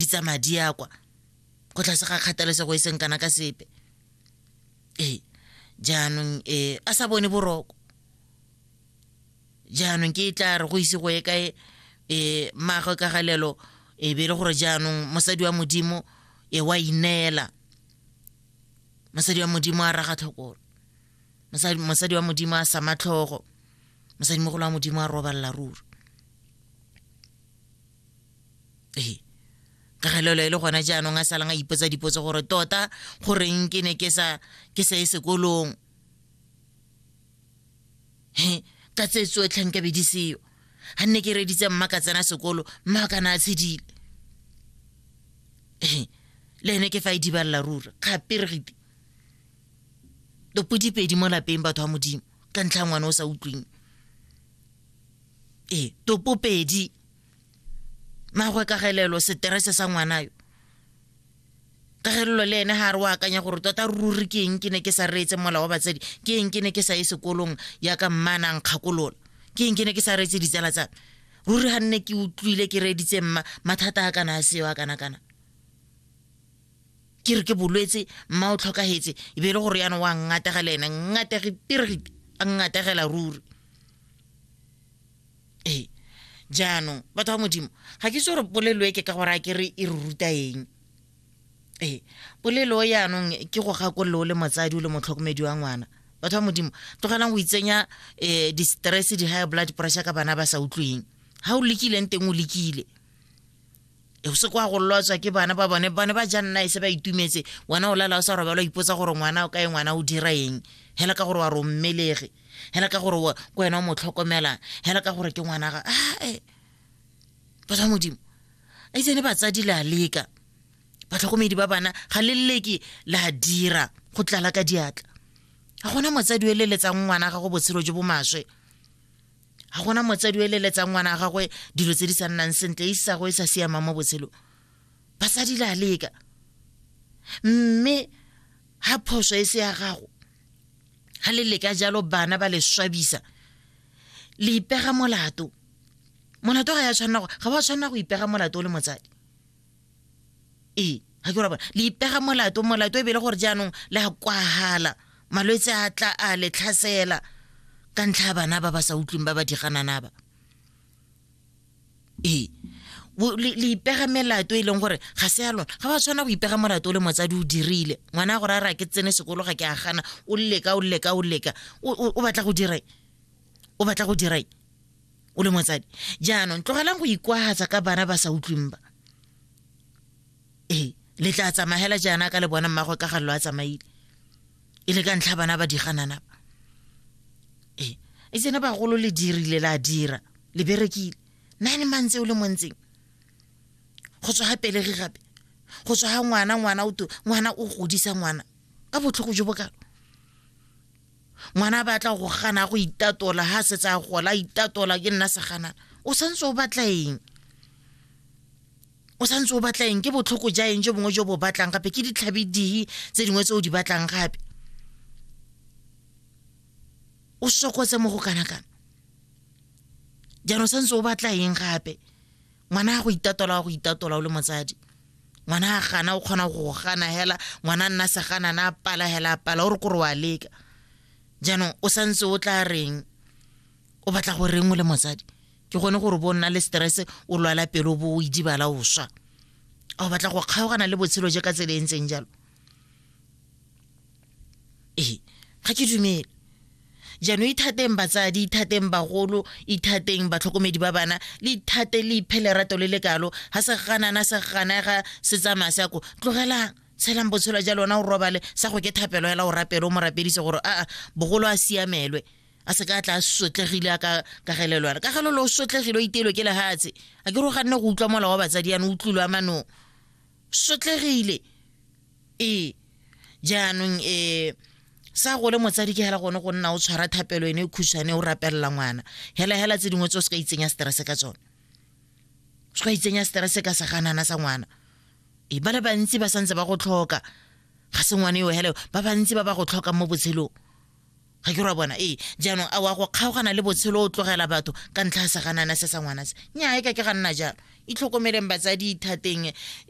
di tsamaya di ya kwa go tlase ga kgathalesego e seng kana ka sepe ee jaanong e a sa bone boroko jaanong ke e tla re go ise go ye kae e maagwe ka galelo e be e le gore jaanong mosadi wa modimo e wa ineela mosadi wa modimo a raga tlhokolo mosadi wa modimo a sama tlhogo mosadimogolo wa modimo a robalela ruri ee ka galelo e le gona jaanong a salang a ipotsa dipotso gore tota goreng ke ne ke sa ke sa e sekolong he ka tse tsotlhe nka be di seyo ga nne ke reditse mma ka tsena sekolo mma ka na a tshedile ee le ene ke fa e dibalela rura kgaperegite topodipedi mo lapeng batho ba modimo ka ntlha ngwana o sa utlweng ee topopedi magwe kagelelo seterese sa ngwana yo kagelelo le ene ga re o akanya gore tota ruri ke eng ke ne ke sa reetse mola wa batsadi ke eng ke ne ke sa ye sekolong yaka mmanang kgakolola ke eng ke ne ke sa reetse ditsala tsame ruri ga nne ke utlwile ke reeditse mma mathata a kana a seo a kana kana ke re ke bolwetse mma o tlhokagetse e be e le gore yana wa ngatega le ene ngatege pirigite a ngategela ruri ee jaanong batho ba modimo ga ke itse gore polelo e ke ka gore a ke re e re ruta eng ee polelo e yaanong ke go gakolole o le motsadi o le motlhokomedi wa ngwana batho ba modimo tlogelang go itsenya um di-stress di-high blood pressure ka bana ba sa utlweng ga o lekileng teng o lekile e o se kwa go lotswa ke bana ba bone bone ba jang nna e se ba itumetse wena o lala o sa robala o ipotsa gore ngwana o kae ngwana o dira eng hela ka gore wa rommelege hela ka gore ko wena o mo tlhokomelang hela ka gore ke ngwana ga ae batho ba modimo a itse ne batsadi le a leka batlhokomedi ba bana ga le leke la dira go tlala ka diatla ga gona motsadi o eleletsang ngwana gago botshelo jo bo maswe ga gona motsadi o eleletsang ngwana ga gagwe dilo tse di sa nnang sentle e sa go e sa siamang mo botshelo basadi la leka mme ga phoso e se ya gago ga le leka jalo bana ba le swabisa le ipega molato molato ga ya tshwanela ga wa tshwanela go ipega molato o le motsadi ee ga ke rabona le ipega molato molato e bele gore jaanong le a kwagala malwetse a tla a le tlhasela ka ntlha ya bana ba ba sa utlweng ba ba diganana ba ee le ipega melato e leng gore ga se ya lona ga ba tshwana go ipega molato o le motsadi o dirile ngwana a gore a re a ke tsene sekolo ga ke a gana o leka o leka o leka o batla go dira o batla go dira o le motsadi jaanong tlogelang go ikwagatsa ka bana ba sa utlweng ba ee le tla tsamagela jaana ka le bona mmagwe ka ga lo a tsamaile e le ka ntlha bana ba diganana ba ee e tsene bagolo le dirile la dira le berekile nine months o le montseng go tswa ga pelegi gape go tswa ga ngwana ngwana o ngwana o godisa ngwana ka botlhogo jo bokalo ngwana a batla go gana go itatola ha setse a gola a itatola ke nna seganana o santse o batla eng o santse o batla eng ke botlhoko ja eng jo bongwe jo bo batlang gape ke ditlhabi dihi tse dingwe tse o di batlang gape o sokotse mo go kana kana jaanong santse o batla eng gape ngwana a go itatola wa go itatola o le motsadi ngwana a gana o kgona go gana hela ngwana nna se gana na pala hela pala o re kore wa leka jaanong o santse o tla reng o batla go reng o le motsadi ke gone gore bo nna le stress o lwala pelo bo o idibala o swa a o batla go kgaogana le botshelo je ka tsela e ntseng jalo ee ga ke dumele jaanong ithateng batsadi ithateng bagolo ithateng batlhokomedi ba bana le ithate le iphe lerato le le kalo ga se ganana se ganega se tsamaya se yako tlogelang tshelang botshelo ja lona o robale sa go ke thapelo fela o rapele o mo rapedise gore aa bogolo a siamelwe a se ka tla a sotlegile a ka kagelelwana ka gelo le o sotlegile o iteelwe ke lehatshe a ke ro ganne go utlwa mola wa batsadi yana o tlulwa manong sotlegile ee jaanong um sa go le motsadi ke hela gone go nna o tshwara thapelo ene e khutshwane o rapelela ngwana hela hela tse dingwe tse o se ka itsenya stress ka tsone o se ka itsenya stress ka seganana sa ngwana e ba le bantsi ba santse ba go tlhoka ga se ngwane eo hela ba bantsi ba ba go tlhoka mo botshelong ga ke ra bona ee jaanong a wa go kgaogana le botshelo o tlogela batho ka ntlha ya seganana se sa ngwana se nyae ka ke ga nna jalo itlhokomeleng batsadi ithateng